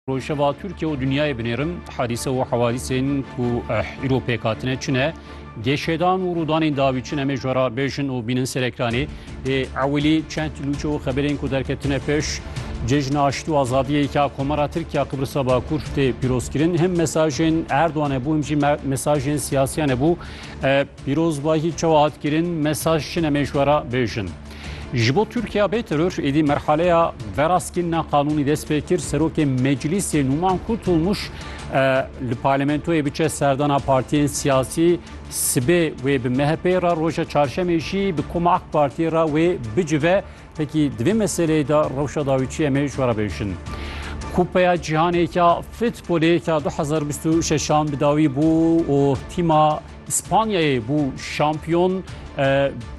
Rojheva Tirkiye û dinyayê binêrin hadîse û hewadîsên ku eh, îro pêk hatine çi ne geşedan û rûdanên dawî çi ne me jwara bêjin û bînin ser ekranê ê ewilî çend lûçe û xeberên ku derketine pêş cejna aştî û azadiyê ka komara Tirkiya Qibrisa Bakur tê pîrozkirin him mesajên Erdogan hebû him jî me- mesajên siyasiyan hebû Eh, pîrozbahî çawa hat kirin mesaj çi ne me jwara bêjin Ji bo Tirkiya bê teror êdî merhaleya veraskînina qanûnî dest pê kir serokê meclîsê Nûman Kutulmuş li parlamentoyê biçe serdana partiyên siyasî sibê wê bi MHP'ê re roja çarşemê jî bi Koma AK Partiyê re wê bicive pekî di vê meseleyê de rewşa dawîçiyê em ê ji we re bêjin. Kupeya cîhanê ya futbolê ya 2026 an bi dawî bû û tîma Spanyayê bû şampiyon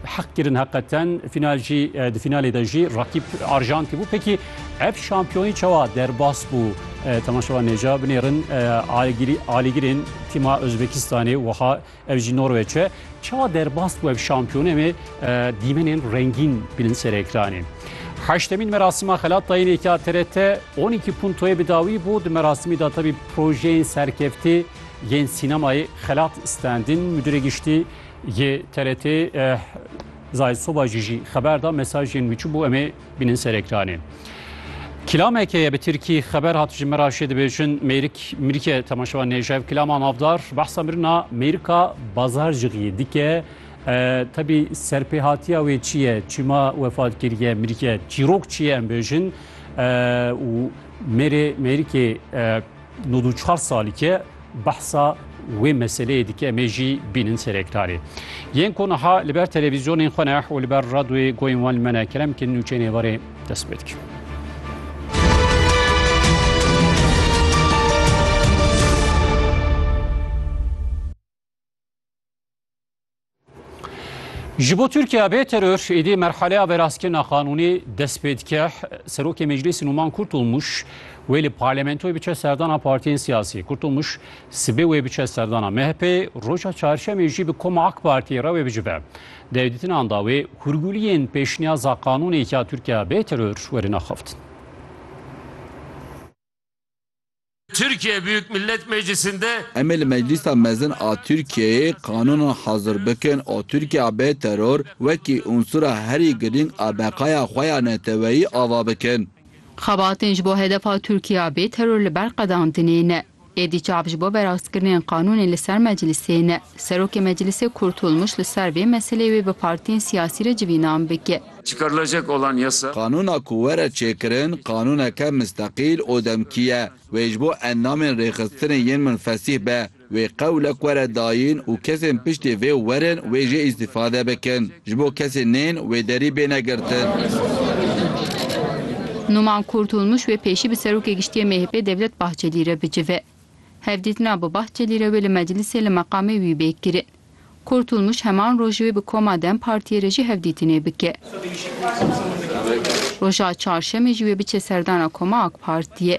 heq kirin heqeten fînal jî di fînalê de jî rakîb Arjantî bû. Pekî ev şampiyonî çawa derbas bû temaşevan nêca binêrin alîgirên tîma Ozbekistanê wiha ev jî Norweçe çawa derbas bû ev şampiyonê em ê dîmenên rengîn binin ser ekranê. Heştemîn merasima xelatayînêka TRT 12 puntoyê bi dawî bû di merasimî de tevî projeyên serkeftî yên sînemayê Xelat Standin, Mudîrê Giştî yê TRT'ê Zahid Sobacî jî xeber da mesajên wî çi bû em ê bînin ser ekranê. Kilameke ye bi Tirkî xeber hat ji Miraşê dibêjin mêrik mirike temaşewa nêjev kilama navdar behsa mirina mêrika bazar jixî dike tebî serpêhatiya wê çi ye çima wefat kiriye mirike çîrok çi ye em bêjin û mêrê mêrikê Nod û çar salî ke behsa wê meseleyê dike em ê jî bînin serekdarê. Yên ku niha li ber televîzyonên xwe ne û li ber radyoyê goyên wan li me ne kerem kirin û çênê warê dest pê dikin. Ji bo Tirkiye bê teror êdî merhaleya veraskirina qanûnê dest pê dike. Serokê Meclîsê Nûman Kurtulmuş wê li parlamentoyê biçe serdana partiyên siyasî. Kurtulmuş sibê wê biçe serdana MHP'ê, roja çarşemê jî bi koma AK Partiyê re wê bicive. Di hevdîtinan de wê hûrgûliyên pêşniyaza qanûnê ya Tirkiye bê teror werin axaftin. Tirkiye, Büyük Millet Meclisi'nde. Em ê li Meclîsa Mezin a Tirkiyeyê qanûnan hazir bikin û Tirkiya bê teror wekî unsura herî girîng a beqaya xwe ya neteweyî ava bikin. Xebatên ji bo hedefa Tirkiya bê teror li ber qedandinê ne. Êdî çav ji bo verastkirinên qanûnê li ser Meclisê ne. Serokê Meclîsê Kurtulmuş li ser vê meseleyê wê bi partiyên siyasî re civînan bike. Çıkarılacak olan yasa. Qanûna ku were çêkirin qanûneke misteqîl û demkî ye. Wê ji bo endamên rêxistinê yên min fesîh be, wê qewlek were dayîn û kesên piştî vê werin wê jê îstîfade bikin. Ji bo kesên nên wê derî bêne girtin. Numan Kurtulmuş wê pêşî bi Serokê Giştî yê MHP'ê Devlet Bahçelî re bicive. Hevdîtina bi Bahçelî re wê li meclîsê li meqamê wî bê kirin. Kurtulmuş heman roj wê bi koma dem Partiyê re jî hevdîtinê bike. Roja Çarşemê jî wê biçe serdana koma AK Partiyê.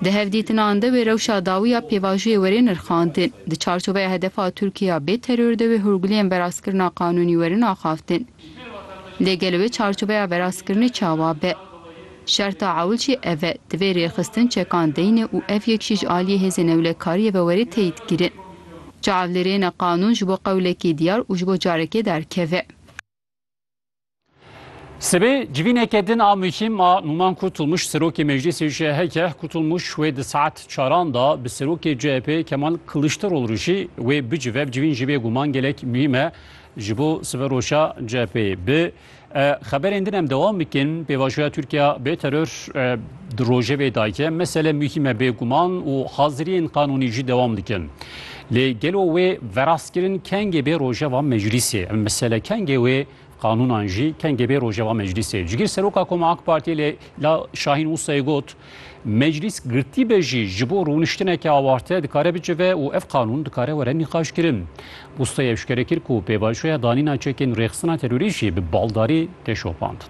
Di hevdîtinan de wê rewşa dawî ya pêvajoyê were nirxandin. Di çarçoveya hedefa Tirkiye ya bê teror de wê hûrguliyên verazkirina qanûnî werin axaftin. Lê gelo wê çarçoveya verazkirinê çawa be? Şerta ewil jî ev e, divê rêxistin çekan deyne û ev yek jî ji aliyê hêzên ewlekariyê ve were teyîdkirin. Ca ev li rê ne qanûn ji bo qewlekî diyar û ji bo carekê derkeve. Sibê civîneke din a muhîm a Numan Kurtulmuş Serokê Meclîsê CHK e. Kurtulmuş wê di saet çaran de bi Serokê CHP'ê Kemal Kiliçdaroglu re jî wê bicive. Ev civîn jî bêguman gelek muhîm e ji bo siveroja CHP'ê. Bi Xeberên din em dewam bikin. Pêvajoya Tirkiya bê teror di rojevê dayike mesele muhîme bêguman û haziriyên qanûnî jî dewam dikin. Lê gelo wê verastkirin kengê bê rojeva meclîsê. Em mesele kengê wê qanûnan jî kengê bê rojeva meclîsê. Cigîr Seroka Koma AK Partiyê lê la Şahîn Wisayê got Meclîs girtî be jî ji bo rûniştineke awarte dikare bicive û ev qanûn dikare were nîqaşkirin. Bûstoy eşkere kir ku pêvajoya danîna çekên rêxistina terorî jî bi baldarî tê şopandin.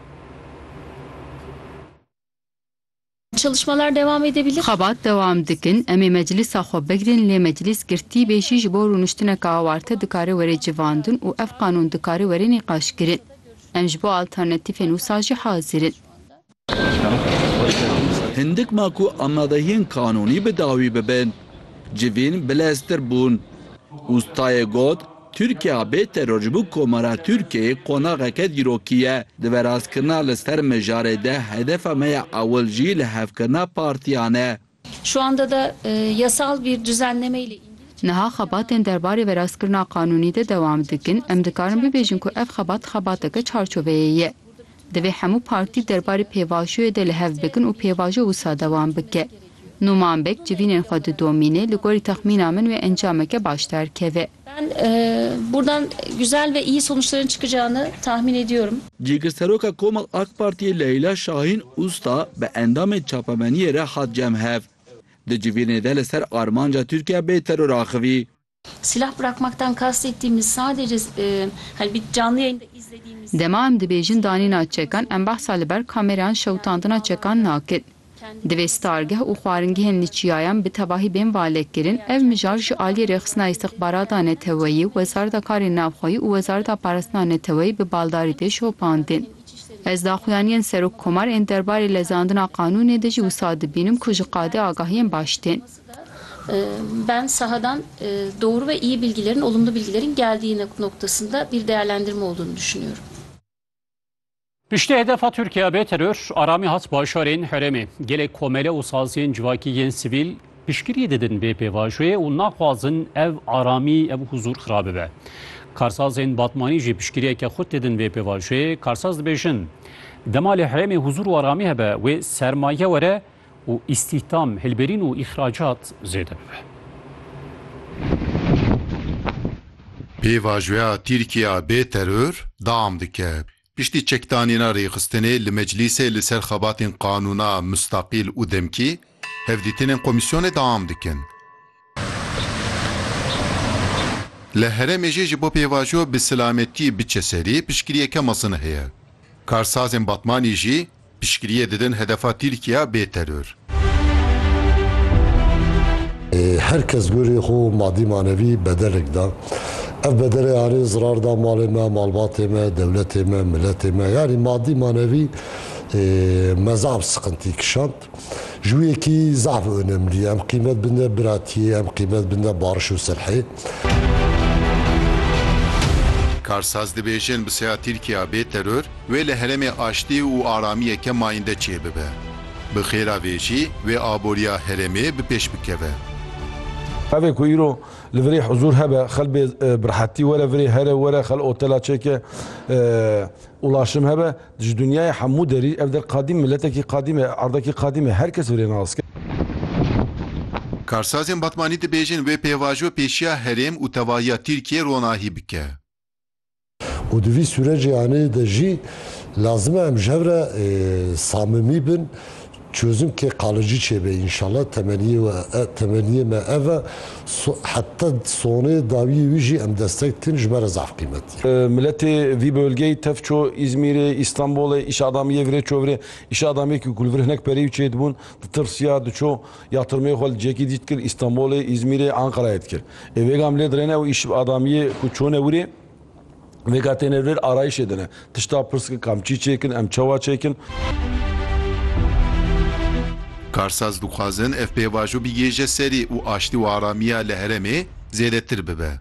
Çalışmalar devam edebilir. Xebat dewam dikin, em ê meclîsa xwe bigirin lê meclîs girtî be jî ji bo rûniştineke awarte dikare were civandin û ev qanûn dikare were nîqaşkirin. Em ji bo alternatîfên wisa jî hazir in. Hindik ma ku amadehiyên kanûnî bi dawî bibin, civîn bileztir bûn. Ustayê got, Tirkiya bê teror ji bo komara Tirkiyeyê qonaxeke dîrokî ye. Di veraskirina li ser mijarê de hedefa me ya ewil jî lihevkirina partiyan e. Niha xebatên derbarê verastkirina qanûnî de dewam dikin, em dikarin bibêjin ku ev xebat xebateke çarçoveyê ye. Divê hemû partî derbarê pêvajoyê de li hev bikin û pêvajo wisa dewam bike. Nûman Beg civînên xwe didomîne, li gorî texmîna min wê encameke baş derkeve. Ben buradan güzel ve iyi sonuçların çıkacağını tahmin ediyorum. Cîgirseroka Koma ak Partiyê Leyla Şahin Usta bi endamên çapemeniyê re hat cem hev. Di civîrnê de li ser armanca Tirkiye bê teror axivî. Silah bırakmaktan kastettiğimiz sadece hani bir canlı yayında izlediğimiz. Dema em dibêjin danîna çekan em behsa li ber kamerayan şewitandina çekan nakin. Divê stargeh û xwaringehên li çiyayan bi tevahî bên valekkirin, ev mijar ji aliyê rêxistina îstixbarata neteweyî, Wezareta Karên Navxweyî û Wezareta Parastina Neteweyî bi baldarî tê şopandin. Ez daxuyaniyên Serok Komar ên derbarê lezandina qanûnê de jî wisa dibînim ku ji qadê agahiyên baş tên. Piştî hedefa Tirkiye bê teror, aramî hat bajarên herêmê. Gelek komele û saziyên civakî yên sivîl piştgirî didin vê pêvajoyê û naxwazin ev aramî, ev huzûr xirab bibe. Karsazên Batmanî jî piştgiriyeke xurt didin vê pêvajoyê. Karsaz dibêjin, Dema li herêmê huzûr û aramî hebe, wê sermaye were, û îstîhdam, hilberîn û îxracat zêde bibe. Pêvajoya Tirkiya bê teror deam dike. Piştî çekdanîna rêxistinê li Meclîsê li ser xebatên qanûna mustaqîl û demkî, hevdîtinên komîsyonê deam dikin. Li herêmê jî ji bo pêvajo bi silametî biçe serî piştgiriyeke mezin heye. Karsazên Batmanî jî piştgiriyê didin hedefa Tirkiya bê teror. Her kes gorî xwe madî manevî bedelek da. Ev bedelê anî zirar da malê me, malbatê me, dewletê me, miletê me. Yanî madî manevî mezaf siqintî kişand. Ji wî yekî zehf onemlî, em qîmet binde biratiyê, em qîmet binde bariş û silhê. Karsaz dibêjin bi seya Tirkiya bê teror wê li heremê aştî û aramiyeke mayinde çêbibe. Bi xêra vê jî wê aboriya heremê bi pêş bikeve. Ev ê ku îro li virê huzur hebe, xel bê bi rehetî were virê here were, xel otela çêke, ulaşim hebe, Ji dinyayê hemû derî ev der qadîm, miletekî qadîm e, erdekî qadîm e, her kes virêna aske. Karsazên Batmanî dibêjin wê pêvajo pêşiya herêm û tevahiya Tirkiyê ronahî bike. Û di vî sûrecê anê de jî lazim e em ji hev re samimî bin Çozimkê qalici çêbe înşala temeniyê we temeniyê me ev e heta sonê dawiyê wî jî em destek dikin ji me re zaf qîmetî ye. Miletê vî bölgeyî tev çû Îzmîrê, Îstanbulê îşa adamiyê virê çû vir e. Îşa adamiyekî ku li vir hinek pereyî û çê dibûn ditirsiya diçû ya tirmeyê xwe li cihekî dî dikir Îstanbulê, Îzmîrê, Enqerayê dikir. Ê vêga milê dirêne ew îş adamiyê ku çûne wirê. Vêga têne vêr arayîşê din e. Tişta pirskin kam çî çêkin, em çawa çêkin. Karsaz dixwazin ev pêvajo bigêje serê û aştî û aramiya li heremê zêdetir bibe.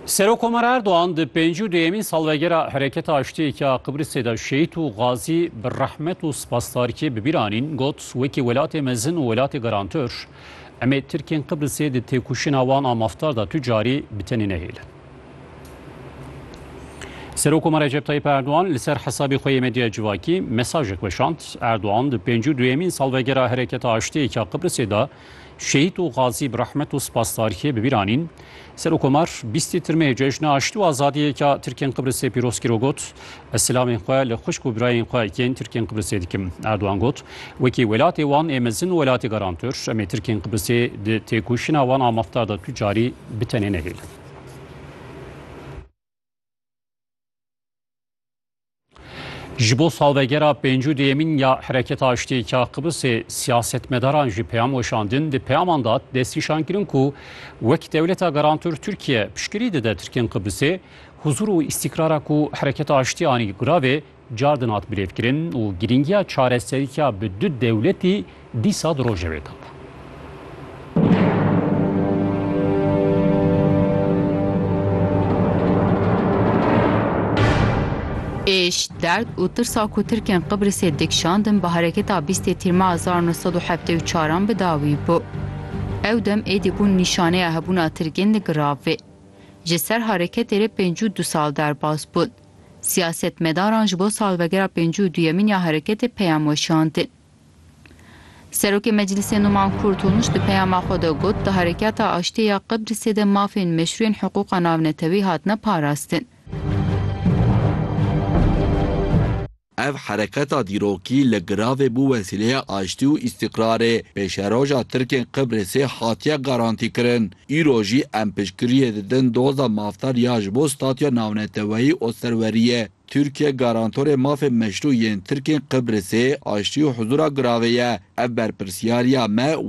Serokkomar Erdogan di pêncî û duyemîn salvegera Hereketa Aştiyeke ya Qibrisê de şehîd û gazî bi rehmet û spasdarîkê bi bîr anîn, got, Wekî welatê mezin û welatê garantor, em ê Tirkên Qibrisê di têkoşîna wan a mafdar de tu carî bi tenê nehêlin. Serokkomar Recep Tayyip Erdogan li ser hesabê xwe yê medya civakî mesajek weşand. Erdogan di pêncî û duyemîn salvegera Hereketa Aştiyeke ya Qibrisê de Şehîd û Gazî bi rehmet û spasdarîyê bi bîr anîn. Serokomar bîstî tirmeyê Cejna Aştî û Azadiyê ya Tirkên Qibrisê pîroz kir û got, Ez silamên xwe li xwişk û birayên xwe yên Tirkên Qibrisê dikim. Erdogan got, Wekî welatê wan ê mezin û welatê garantor, em ê Tirkên Qibrisê di têkoşîna wan a mafdar de tu carî bi tenê nehêlin. Ji bo salvegera pêncû dêyemîn ya Hereketa Aştiyêka Qibrisê siyasetmedaran jî peyam weşandin di peyaman de destnîşan kirin ku wek dewleta garantor Tirkiye piştgirî dide Tirkên Qibrisê huzûr û îstîkrara ku Hereketa Aştiyê anî guravê car din hat birêvkirin û girîngiya çareseriya bi du dewletî Dîsa di rojevê de bû. Êş, derd û tirsa ku Tirkên Qibrisê dikişandin bi hereketa bîstê Tîrma hezar û neh sed û heftê û çar an bi dawî bû. Ew dem êdî bûn nîşaneya hebûna Tirkên li giravê. Ji ser hereketê re pênc û du sal derbas bûn. Siyasetmedaran ji bo salvegera pêncî û duyemîn ya hereketê peyam weşandin. Serokê Meclîsê Numan Kurtulmuş di peyama xwe de got, di Herekata Aştiyê ya Qibrisê de mafên meşrû yên hiqûqa navnetewî hatine parastin. Ev hereketa dîrokî li giravê bû wesîleya aştî û îstîqrarê. Pêşeroja Tirkên Qibrisê hatiye garantîkirin. Îro jî em piştgiriyê didin doza mafdar ya ji bo statuya navneteweyî û serweriyê. Tirkiye garantorê mafê meşrû yên Tirkên Qibrisê, aştî û huzûra giravê ye. Ev berpirsyariya me û